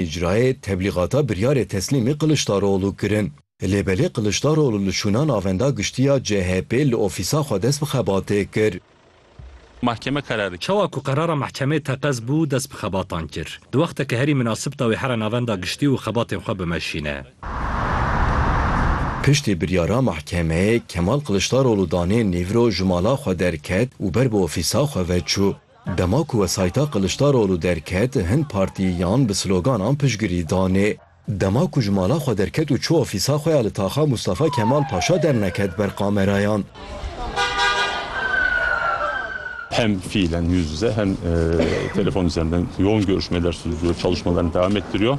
Îcrayê teblîgata biryarê Teslîmî Kiliçdaroglu kirin. Lê belê Kiliçdaroglu li şûna Navenda Giştî ya CHP'ê li ofîsa xwe dest bi xebatê kir. Mahkeme kararê. Çawa ku qerara mahkemê teqez bû dest bi xebatan kir. Di wexteke herî minasib de wê here Navenda Giştî û xebatên xwe bimeşîne. Piştî biryara mahkemeyê Kemal Kiliçdaroglu danê nîvro ji mala xwe derket û ber bi ofîsa xwe ve çû. Dema ku wesayîta Kiliçdaroglu derket, hin partiyan bi sloganan piştgirî danê. Dema ku ji mala xwe derket û çû ofîsa xwe ya li Taxa Mûstafa Kemal Paşa derneket ber kamerayan. Hem fiilen yüz yüze hem telefon üzerinden yoğun görüşmeler sürdürüyor, çalışmalarını devam ettiriyor.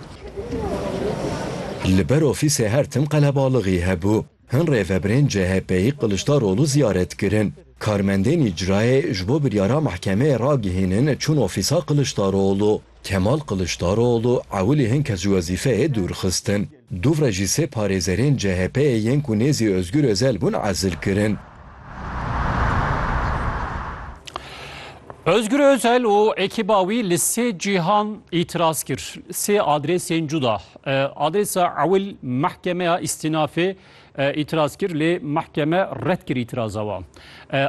Li ber ofîsê her tim qelebalixî hebû. Hin rêveberên CHP'yî Kiliçdaroglu ziyaret kirin. Karmendên îcrayê ji bo biryara mehkemeyê ragihînin çûn ofîsa Kiliçdaroglu. Kemal Kiliçdaroglu ewilî hin kes ji wezîfeyê dûr xistin. Dûvre jî sê parêzerên CHP'yê yên ku nêzî Ozgur Ozel bûn ezil kirin. Ozgur Ozel û ekîba wî li sê cîhan îtiraz kir. Sê adrêsên cuda Adresa ewil mehkemeya îstînafê îtiraz kir lê mehkeme red kir îtiraza wan.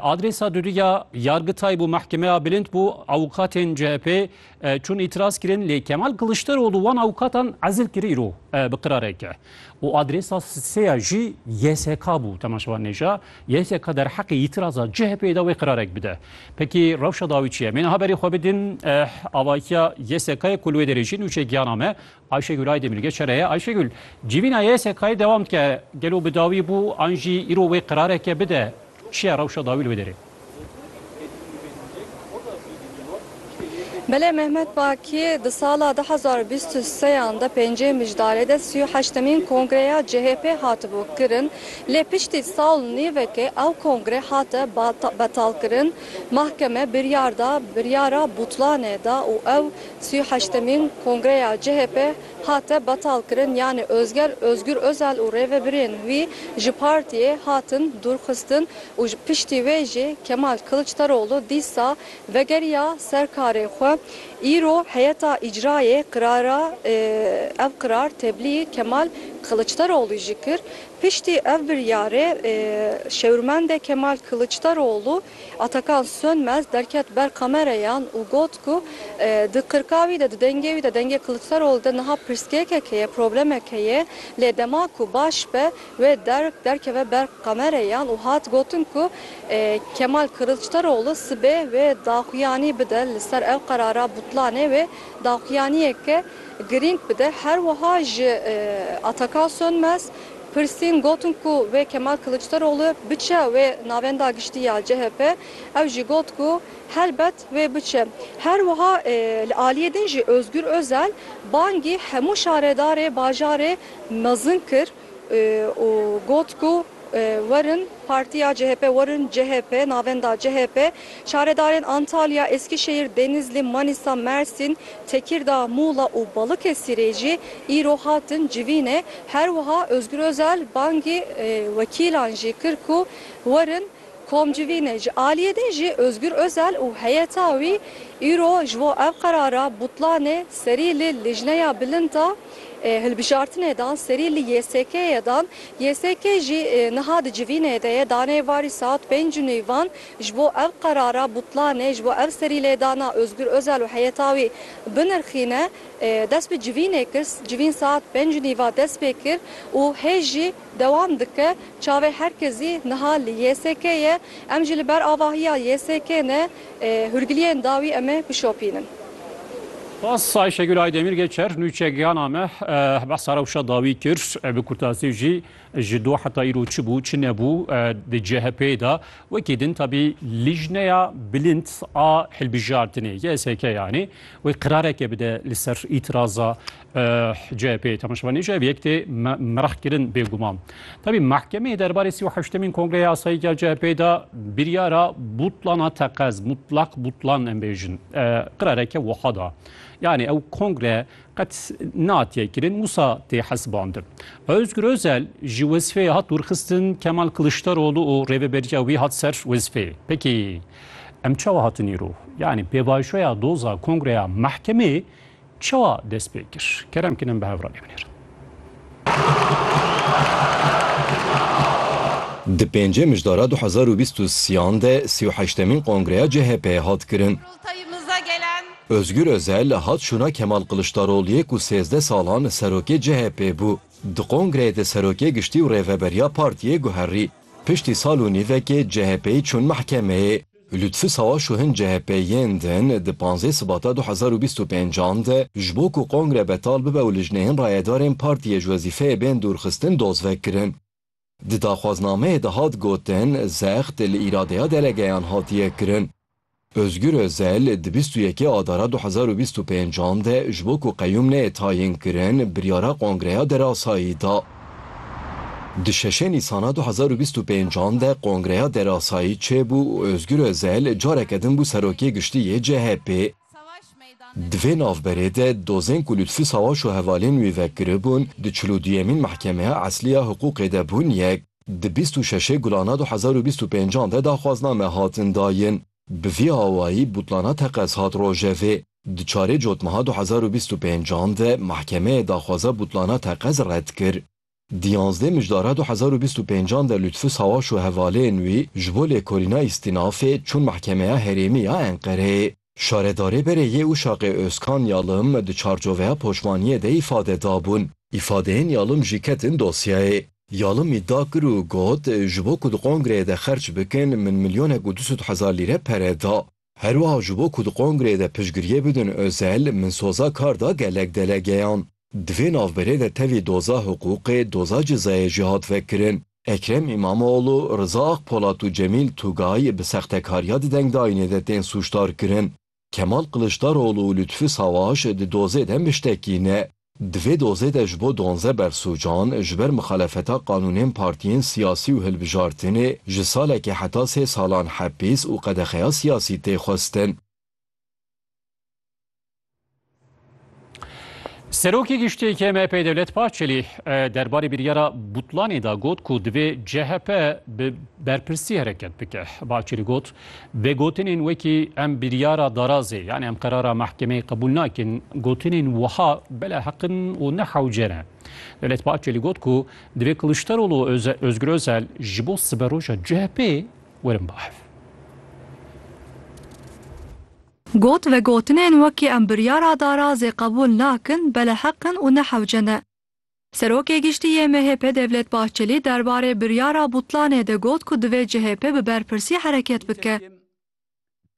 Adresa dudû ya yargitay bû mehkemeya bilind bû awûkatên CHP'ê çûn îtiraz kirin lê Kemal Kiliçdaroglu wan awûkatan ezil kir îro bi qirareke. Û adresa sê ya jî YSK bû temaşevan nêja YSK derheqê îtiraza CHP'ê de wê qirarek bide. Pekî rewşa dawî çi ye? Mê niha berê xwe bidin avahiya YSK'ê ku li wê derê jî nûçeyê giyana me. Ayşegül Aydemir, Geç here ye. Ayşegül, civîna YSK'yê dewam dike. Gelo bi dawî bû an jî îro wê qerareke bide? Çi ye rewşa dawî li wê derê? Belê Mehmet Bakî, di sala du hezar û bîst û sê yan de pêncê Mijdarê de sî û heştemîn kongreya CHP hatibû kirin lê piştî sal û nîvekê ew kongre hate betalkirin. Mahkeme biryar da, biryara butlanê da û ew Sî û heştemîn kongreya CHP hate betalkirin yanî Ozger Ozgur Ozal û rêvebirên wî ji partiyê hatin dûrxistin û ji piştî wê jî Kemal Kiliçdaroglu dîsa vegeriya ser karê xwe. Îro heyeta îcrayê qirara ev qirar teblî Kemal Kiliçdaroglû jî kir. Piştî ev biryarê şêwirmendê Kemal Kiliçdaroglu, Atakan Sönmez derket ber kamereyan û got ku di qirka wî de, di dengê wî de, dengê Kiliçdaroglu de niha pirsgêkek heye, problemek heye, lê dema ku baş be wê derg derkeve ber kamereyan û hat gotin ku Kemal Kiliçdaroglu sibê wê daxuyanî bide li ser ev qerara butlanê wê daxuyaniyeke girîng bide. Her wiha ji Atakan Sönmez, Pirsîn gotin ku wê Kemal Kiliçdaroglu biçe wê navenda giştî ya chp, ew jî got ku helbet wê biçe. Her wiha li aliyê din jî Ozgur Ozel bangî hemû şaredarê bajarê mezin kir û got ku werin partiya chp, werin chp, navenda chp. Şaredarên Antalya, Eskişehîr, Denizli, Manîsa, Mersîn, Tekîrda, Mûla û Balıkesirê jî îro hatin civînê. Her wiha Ozgur Ozel bangî wekîlan jî kir ku werin kom civînê. Ji aliyê din jî Ozgur Ozel û heyeta wî îro ji bo ev qerara butlanê serî li Lijneya Bilind a Hilbijartinê dan, serî li YSK'ê dan. YSK jî niha di civînê de ye. Daneyê varî saet pênc û nîvan Ji bo ev qerara butlanê, ji bo ev serîlêdana Ozgur Ozal û heyeta wî binirxîne, dest bi civînê kir. Civîn saet pênc û nîva dest pê kir û hê jî dewam dike. Çavê her kesî niha li YSK'ê ye. Em jî li ber avahiya YSK'ê ne hûrgiliyên da wî em ê bişopînin. Spas Ayşegül Aydemir Geçer, Nûçe gihana me behsa rewşa dawî kir. Bi kurtasî jî Ji do heta îro çi bû çi nebû di CHP'ê de wekî din tabî Lijneya Bilind a Hilbijartinê YSK yanê wê qirareke bide li ser îtiraza CHP'ê temaşevanê ji ev yek tê merahkirin bêguman. Tabî mehkemeyê derbarê sî û heştemîn kongreya asayîk ya CHP'ê de biryara butlana teqez mutlak butlan em bêjin qirareke wiha da. Yanê ew kongre Qet natiye kirin wisa tê hesibandin. Ozgur Ozel ji wezifeyê hat dûrxistin, Kemal Kiliçdaroglu û rêveberiya wî hat ser wezifeyê. Peki em çawa hatin îro? Yanî pêvajoya doza kongreya mehkemê çawa dest pê kir? Kerem kin em bi hev re lê binêrin. Di pêncê mijdara du hezar û bîst û siyan de sî û heştemîn kongreya CHP'ê hat kirin. Ozgur Ozel hat şûna Kemal Kiliçdaroliyê ku sêzdeh salan serokê CHP'ê bû. Di kongreyê de serokê giştî û rêveberiya partiyê guherî. Piştî sal û nîvekê CHP'yê çûn mehkemeyê. Lutfû Sawaş û hin CHP'yên din di panzdeh Sibata du hezar û bîst û pênc an de ji bo ku kongre betal bibe û lijneyên rayedarên partiyê ji wezîfeyê bên dûrxistin dozvekirin. Di daxwaznameyê de hat gotin, zext li îradeya delegeyan hatiye kirin. Ozgur Ozel di bîst û yekê Adara du hezar û bîst û pênc an de ji bo ku qeyûm neyê tayînkirin, biryara kongreya derasayî da. Di şeşê Nîsana du hezar û bîst û pênc an de kongreya derasayî çêbû û Ozgur Ozel careke din bû Serokê Giştî yê CHP'ê. Di vê navberê de dozên ku li Lutfî Sawaş û hevalên wî ve giribûn di çil û duyemîn mehkemeya eslî ya hiqûqê de bûn yek. Di bîst û şeşê Gulana du hezar û bîst û pênc an de daxwazname hatin dayin. Bi vî awayî butlana teqez hat rojevê. Di çarê cotmeha du hezar û bîst û pênc an de mehkemeyê daxwaza butlana teqez red kir. Di yanzdeh mijdara du hezar û bîst û pênc an de Lutfu Sawaş û hevalên wî ji bo lêkolîna îstînafê çûn Mehkemeya Herêmî ya Enqereyê. Şaredarê berê yê Uşaqê Ozkan Yalim di çarçoveya poşmaniyê de îfade dabûn. Îfadeyên Yalim jî ketin dosyayê. Yalim îdia kir û got, Ji bo ku di kongreyê de xerç bikin min milyonek û du sed hezar lîre pere da. Herwiha ji bo ku di kongreyê de piştgiriyê bidin Özel, min soza kar da gelek delegeyan. Di vê navberê de tevî doza hiqûqê, doza cezayê jî hat vekirin. Ekrem Îmamoğlu, Riza Akpolat û Cemîl Tugay bi sextekariya di dengdayînê de tên sûcdarkirin. Kemal Kiliçdaroglu û Lutfî Savaş di dozê de miştekî ne. Di vê dozê de ji bo duanze bersûcan ji ber mixalefeta qanûnên partiyên siyasî û hilbijartinê ji salekê heta sê salan hepîs û qedexeya siyasî tê xwestin. Serokê Giştî yê MHP'ê Dewlet Bahçelî derbarê biryara butlanê de got ku divê chp bi berpirsî hereket bike. Bahçelî got, Vê gotinên wekî em biryara darazê yanî em qerara mehkemeyê qebûl nakin gotinên wiha bela heq in û ne hewce ne. Devlet Bahçelî got ku divê Kiliçdaroglu û Ozgur Ozel ji bo siberoja CHP'ê werin bahev. Got, Vê gotinên wekî em biryara darazê qebûl nakin bela heq in û ne hewce ne. Serokê Giştî yê MHP Devlet Bahçelî derbarê biryara butlanê de got ku divê CHP bi berpirsî hereket bike.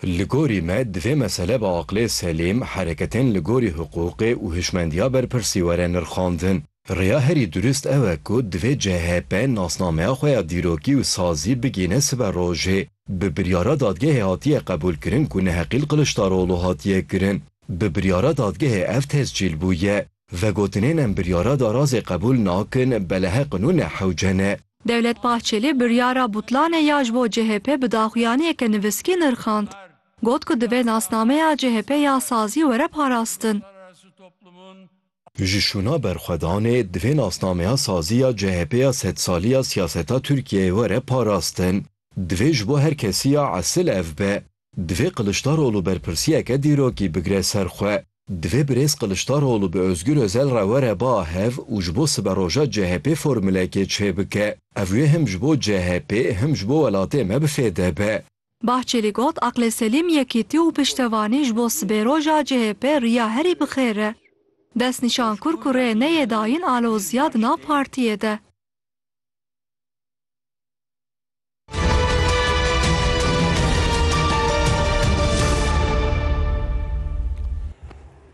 Li gorî me divê mesele bi aqilê selîm, hereketên li gorî hiqûqê û hişmendiya berpirsî were nirxandin. Rêya herî durist ew e ku divê CHP nasnameya xwe ya dîrokî û sazî bigihîne siber rojê. Bi biryara dadgehê hatiye qebûlkirin ku neheqîl Qiliçdaroglu hatiye kirin. Bi biryara dadgehê ev tescîl bûye. Vegotinên em biryara darazê qebûl nakin beleheq nû ne hewce ne. Devlet Bahçeli biryara butlanê ya ji bo chp bi daxuyaniyeke nivîskî nirxand. Got ku divê nasnameya chp ya sazî were parastin. Ji şûna berxwedanê divê nasnameya sazî ya chp ya sedsalî ya siyaseta Tirkiyeyê were parastin. Divê ji bo her kesî ya esil ev be. Divê Kiliçdaroglu berpirsiyeke dîrokî bigire ser xwe. Divê Birêz Kiliçdaroglu bi Ozgur Ozel re were ba hev û ji bo siberoja CHP'ê formulekê çêbike. Ev wê him ji bo CHP'ê him ji bo welatê me bi fêde be. Bahçelî got, Aqlê selîm, yekîtî û piştevanî ji bo sibêroja CHP'ê riya herî bi xêr e. Destnîşan kur ku rê neyê dayîn aloziya di nav partiyê de.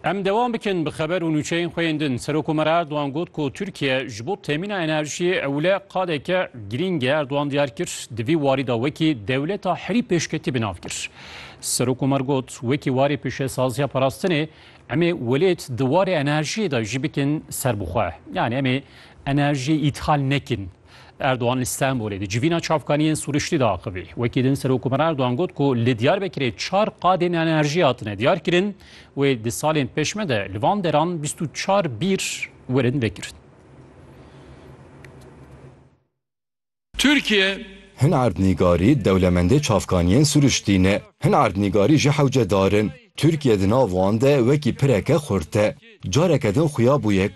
Em devam bikin bi xeber û nûçeyên xwe yên din. Serokomera Erdogan got ku Tirkiye ji bo temîna enerjiyê ewle qadeke girîng e. Erdogan diyar kir di vî warî de wekî dewleta herî pêşketî bi nav kir. Serokomer got wekî warê pêşesaziya parastinê emê welêt di warê enerjiyê de jî bikin serbixwe. Yanî emê enerjiyê îthal nekin. Erdogan li Stenbolê di civîna çavkaniyên sûriştî de axivî. Wekî din Serokomar Erdogan got ku li Diyarbekirê çar qadên enerjî hatine diyar kirin wê di salên pêşme de li van deran bîst û çar bîr werin vekirin. Tirkiye Hin erdnîgarî dewlemendê çavkaniyên sûriştî ne. Hin erdnîgarî jî hewce dar in. Tirkiye di nav wan de wekî pireke xurt e. Careke din xuya bûye